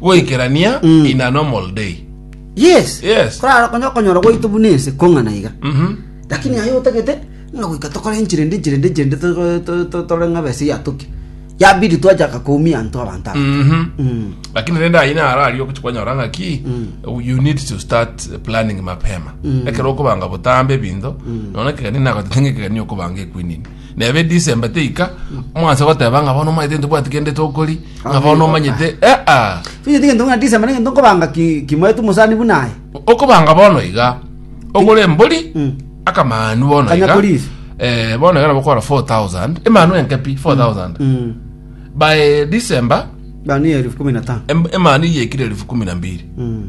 Goikerania Mm. in a normal day. Yes. Yes. Korara konya okonyora gwaito buna ense kong'ana iga. Mhm. Lakini aye otagete ng'a goika tokore enchera ende enchera ende enchera ende to- to- to- tore ng'a bese yatoke. Yabidi twachaka koumia anto abanto aba. Mhm. Mm. lakini rende ayi narario kwanyora ng'aki you need to start planning mapema ekero okobanga botambe ebinto nona kegani nagotetenge kegani okobanga ekwinini Neba edisemba teika mwansa goteba ng'a bono omanyete ntobwati kende tokori ng'a bono omanyete eh ah Figiti gento ng'a December nigento nkobanga ki kimoeto mosani buna aye. okobanga bono iga ogore embori Mm. akamanu bono Kanya iga polisi. eh, bono iga nabo okogora 4000 emanu enke pi 4000 Mm. by December Bani ya elfu kumi na tano. em- emanu iyekire elfu kumi na mbiri Mm.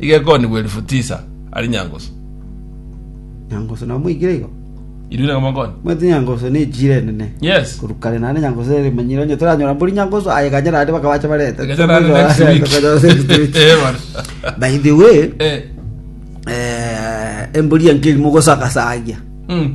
Igekonigwa elifu tisa ari nyangusu. Nyangusu namoigire igo? Irue na gamakonyi. Omanyete nyangusu nechire enene. Yes. Korwa kare naende nyangusu nere emanyire onye toranyora mbori nyangusu aye ganya naende baka bache barete. Ganya naende next week. Eh, bana. By the way, Eh. eh, embori yanke erimo gosagasagia. Mm.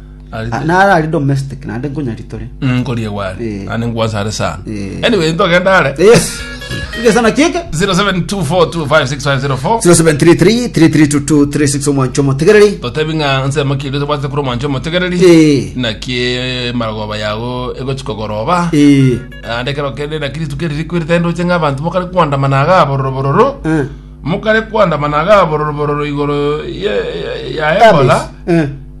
Arete- nare ari domestic naende nkonya ritore nkorie gware Eh. ande ngwasa are sana Eh. anyway ntogenda are yes igesana kieke 0724256504 0733 3322 36 omwancho motegereri totebi ng'a nsemo kiri tobwate kuri omwancho omotegereri Eh. naki marogoba yago egochikogoroba Eh, ande kero kende na kristo keriri kwirita ndoche ng'a abanto mokare kwandamana aga bororo bororo eh, mokare kwandamana aga bororo bororo igoro ye- ye- ya ebola eh,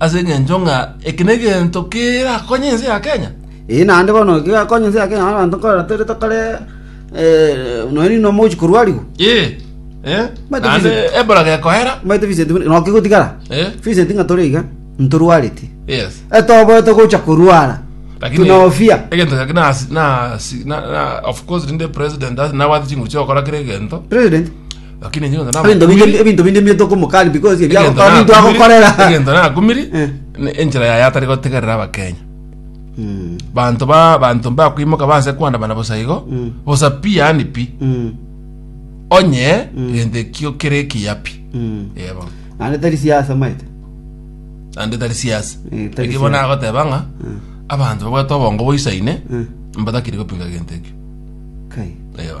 Ase engencho ng'a eke negento kerakonye ense ya Kenya? Eeh naende bono gegakonye ense ya Kenya bono abanto nkorora tore tokore eh, nonya rinde omogochi korwarigwa Ee, eh, Mate naende visit. ebola gekoera. omanyete Vincent buna- noke gotigara Eh? Vincent ng'a tore iga ntorwareti Yes. etoboete gocha korwara Lakini tunofia egento gaki na na na of course rinde president as na wati chinguru chokora kire egento. president Lakini inche egento ebinto binde nabakumiri- ebinto binde mbiete okomoka ari because ebia egento gokora ninto nakumiri- agokorera egento nakumiri Eh. ne- enchera yaye atari gotegerera abakenya Mm, banto ba banto mbakwimoka banse kwandamana bosa igo Mm. bosa pi yani pi mm, onye egento ekio kere ekiya pi mm. yebo naende tari siasa maete ande tari siasa Eh, tari ekio bona siasa. agoteba ng'a Mm, abanto babwate obongo boisaine mm. mbatakiri gopinga egento ekio kai yebo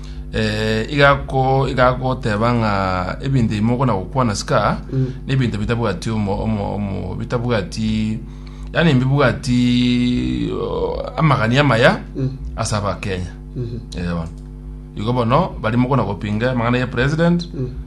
igagoteba ng'a ebinto ebimo okona gokwana sika nebinto bitabwati omo omo omo bitabwati yani mbibwati amagani amaya ase abakenya eh bono igo bono barimo okona gopinga amang'ana ya president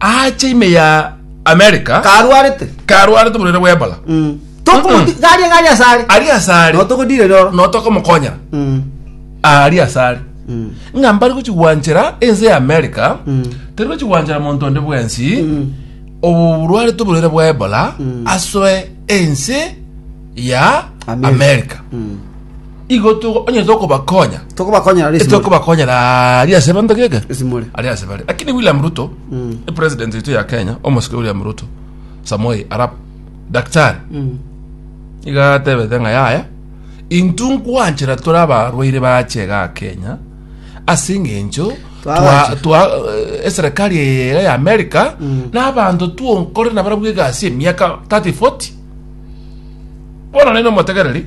ache ime ya america karwarete karwarete oborwaire bwa ebola Mm. Tokumoti- Mm-mm. garia garia asare ari asare notogodire roro notokomokonyera Mm. ari asare Mm. ng'a mbari gochigwanchera ense ya america Mm. tari gochigwanchera monto onde bwensi Mm. oborwarete oborwaire bwa ebola Mm. asoe ense ya America. america Mm. igo to- onye tokobakonya tokobakonyera ase esimori. etokobakonyera ari ase banto geke esimori ari ase bare lakini william ruto Mm. epresident eito ya kenya omosike william ruto samoi arab daktari Mm. iga atebete ng'a yaya intwe nkwanchera tore abarwaire bachega aa kenya ase eng'encho twa- Twabacha. twa- eh, eserekari eye ya america n'abanto twonkore nabarabwo egasi emiaka 30 40 bono naino omotegereri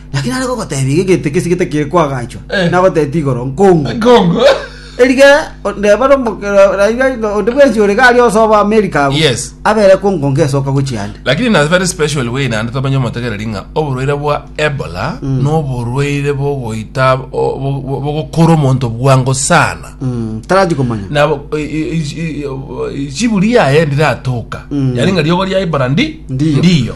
Lakini are gogotebia iga egento ekesi getakire koagachwa, Eh. nagotebetie igoro nkongu. Kongo. Erige ndeba nomokera raiga onde bwensi ore gari osoba America abu. Yes. Abere kongonga esoka gochiande. lakini in a very special way naende twamanya omotegereri ng'a oborwaire bwa ebola noborwaire bogoita o- bo- bo- bogokora omonto bwango sana Mm, taraji komanya. nabo i- i- i- i- chiburi yaye ndiratoka yani ng'a riogo ria ebola ndi Ndiyo. ndiyo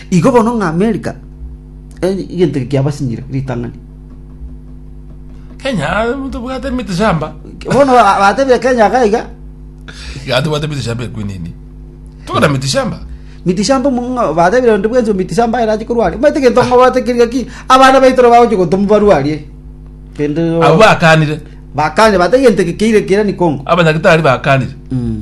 Igo bono ng'a Amerika egento eke kiabasinyire ritang'ani. Kenya tobwate miti shamba. Bono ba- batebia Kenya iga iga. Iga tobwate miti shamba ekwinini. Tokora miti shamba. Miti shamba mong'a batebire ndi bwensi miti shamba aye rachi korwari. Omanyete egento ng'a bwate keri gaki abana baito bagochi gotoma barwarie. Kende Abwo akanire. bakanya bate egento eke keire kerani kongo. Abanyagitari bakanire. Mm.